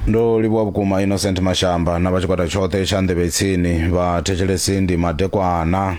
ndo livhuwa vhukuma innocent mashamba na vha tshikwata tshoṱhe tsha nḓevhe tsini vha thetshelesi ndi madekwana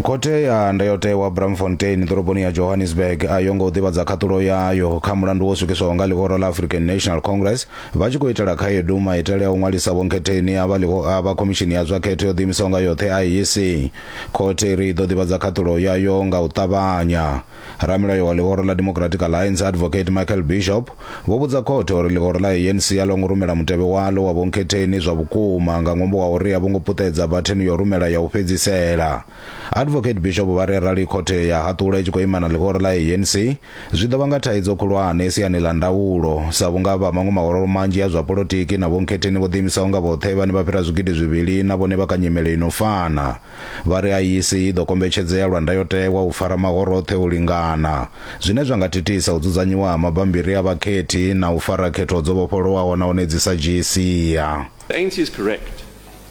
khothe ya ndayotewa bramfontein ḓoroboni ya johannesburg a yo ngo ḓivhadza khaṱulo yayo kha mulandu wo swikiswaho nga ḽihoro ḽa african national congress Vha tshi khou itela khaedu, maitele a u ṅwalisa vhonkhetheni a vha ḽi khou avha Khomishini ya zwa Khetho yo ḓiimisaho nga yoṱhe, IEC. Khothe i ri i ḓo ḓivhadza khaṱhulo yayo nga u ṱavhanya. Ramilayo wa ḽihoro ḽa Democratic Alliance, Advocate Michael Bishop, vho vhudza khothe uri ḽihoro ḽa ANC a ḽo ngo rumela mutevhe waḽo wa vhonkhetheni zwa vhukuma nga ṅwambo wa uri a vho ngo puṱedza bathenu ya u rumela ya u fhedzisela. Advocate Bishop vha ri arali khothe ya haṱula i tshi khou ima na ḽihoro ḽa ANC, zwi ḓo vhanga thaidzo khulwane siani ḽa ndaulo, sa vhunga vha maṅwe mahoro manzhi a zwa polotiki na vhonkhetheni vho ḓiimisaho nga vhoṱhe vhane vha fhira zwigidi zwivhili na vhone vha kha nyimele i no fana. Vha ri IEC i ḓo kombetshedzea lwa ndayotewa u fara mahoro oṱhe u lingana, zwine zwa nga thithisa u dzudzanyiwa ha mabammbiri a vhakhethi na u fara khetho dzo vhofholowaho nahone dzi sa dzhii sia. The ANC is correct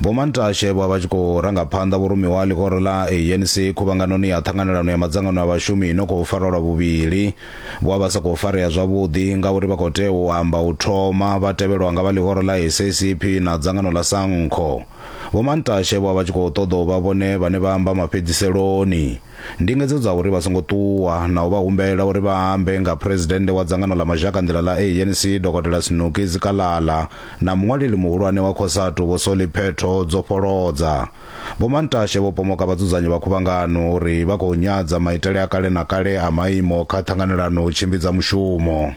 Vho Mantashe vho vha tshi khou ranga phanḓa vhurumiwa ha ḽihoro ḽa ANC khuvhanganoni ya ṱhanganelano ya madzangano a vhashumi ino khou farwa lwa vhuvhili. Vho vha vha sa khou farea zwavhuḓi ngauri vha khou tea u amba u thoma vha tevhelwa nga vha ḽihoro ḽa SACP na dzangano ḽa Sankho. Vho Mantashe vho vha vha tshi khou ṱoḓa u vha vhone vhane vha amba mafhedziseloni. Ndingedzo dza uri vha songo ṱuwa na u vha humbela uri vha ambe nga Phresidennde wa dzangano ḽa mazhakanḓila ḽa ANC Dokotela Snoekie Zikalala na muṅwaleli muhulwane wa Cosatu Vho Solly Phetho dzo fholodza. Vho Mantashe vho pomoka vhadzudzanyi vha khuvhangano uri vha khou nyadza maitele a kale na kale a maimo kha ṱhanganelano tshimbidza mushumo.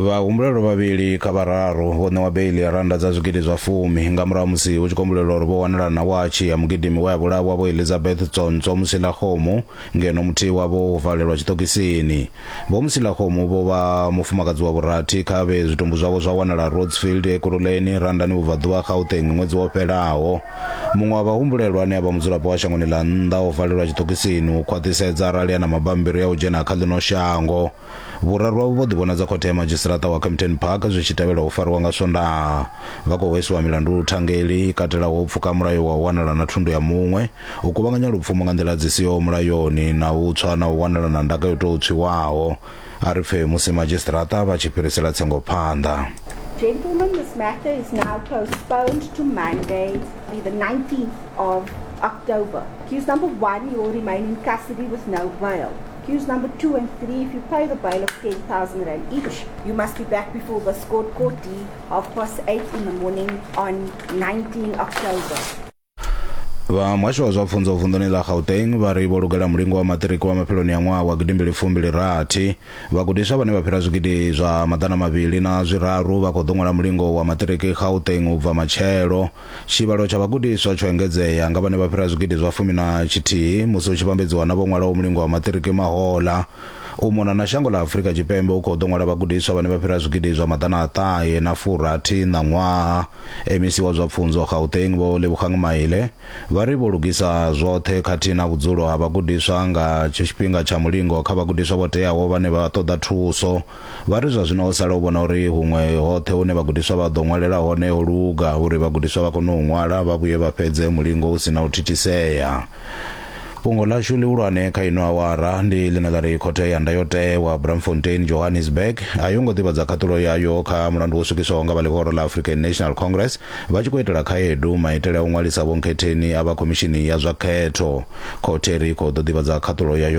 vhahumbulelwa vhavhili kha vhararu vho ṋewa beili ya randa dza zwigidi zwa fumi nga murahu musi hu tshi kombulelwa uri vho wanala na watshi ya mugidimi we a vhulawa vho elizabeth tsontswa musila khomo ngeno muthihi wavho wo valelwa tshiṱokisini Vho Msilakgomo vho vha mufumakadzi wa vhurathi kha vhe zwitumbu zwavho zwa wanala Rhodsfield Ekurhuleni, Randani Vhubvaḓuvha, Gauteng ṅwedzi wo fhelaho. Muṅwe wa vhahumbulelwa ane a vha mudzulapo wa shangoni ḽa nnḓa o valelwa tshiṱokisini u khwaṱhisedza arali a na mabammbiri a u dzhena kha ḽino shango. Vhuraru avho vho ḓivhonadza khothe ya madzhisiṱaraṱa wa Kempton Park zwi tshi tevhela u fariwa nga Swondaha. Vha khou hweswa milandu luthangeli i katelaho u pfuka mulayo wa u wanala na thundu ya muṅwe, U kuvhanganya lupfumo nga nḓila dzi siho mulayoni na u tswa na u wanala na ndaka yo tou tswiwaho. A ri pfe musi madzhisiṱiraṱa vha tshi fhirisela tsengo phanḓa. Gentlemen, this matter is now postponed to Monday, the 19th of October. Accused number one, you will remain in custody with no bail. Accused number two and three, if you pay the bail of 10,000 rand each, you must be back before this court, court D, half past eight in the morning on 19 October. vha muhasho wa zwa pfunzo vunḓuni ḽa gauteng vha ri vho lugela mulingo wa maṱiriki wa mafheloni a ṅwaha wa gidimbili fumbili rathi vhagudiswa vhane vha fhira zwigidi zwa maḓana mavhili na zwiraru vha khou ḓo ṅwala mulingo wa maṱiriki gauteng u bva matshelo tshivhalo tsha vhagudiswa tsho engedzea nga vhane vha fhira zwigidi zwa fumi na tshithihi musi hu tshi vhambedziwa na vho ṅwalaho mulingo wa maṱiriki mahola u mona na shango ḽa afurika tshipembe u khou ḓo ṅwala vhagudiswa vhane vha fhira zwigidi zwa maḓana a ṱahe na furathi ṋaṅwaha MEC wa zwa Pfunzo Gauteng Vho Lebogang Maile vha ri vho lugisa zwoṱhe khathihi na vhudzulo ha vhagudiswa nga tshifhinga tsha mulingo kha vhagudiswa vho teaho vhane vha ṱoḓa thuso. Vha ri zwa zwino ho sala u vhona uri huṅwe hoṱhe hune vhagudiswa vha ḓo ṅwalela hone ho luga uri vhagudiswa vha kone u ṅwala vha vhuye vha fhedze mulingo hu si na u thithisea. fhungo ḽashu ḽihulwane kha ino awara ndi ḽine ḽa ri khothe ya ndayotewa bramfontein johannesburg a yo ngo ḓivhadza khaṱulo yayo kha mulandu wo swikiswaho nga vha ḽihoro ḽa african national congress vha tshi khou itela khaedu maitele a u ṅwalisa vhonkhetheni a vha khomishini ya zwa khetho khothe ri khou ḓo ḓivhadza khaṱulo yayo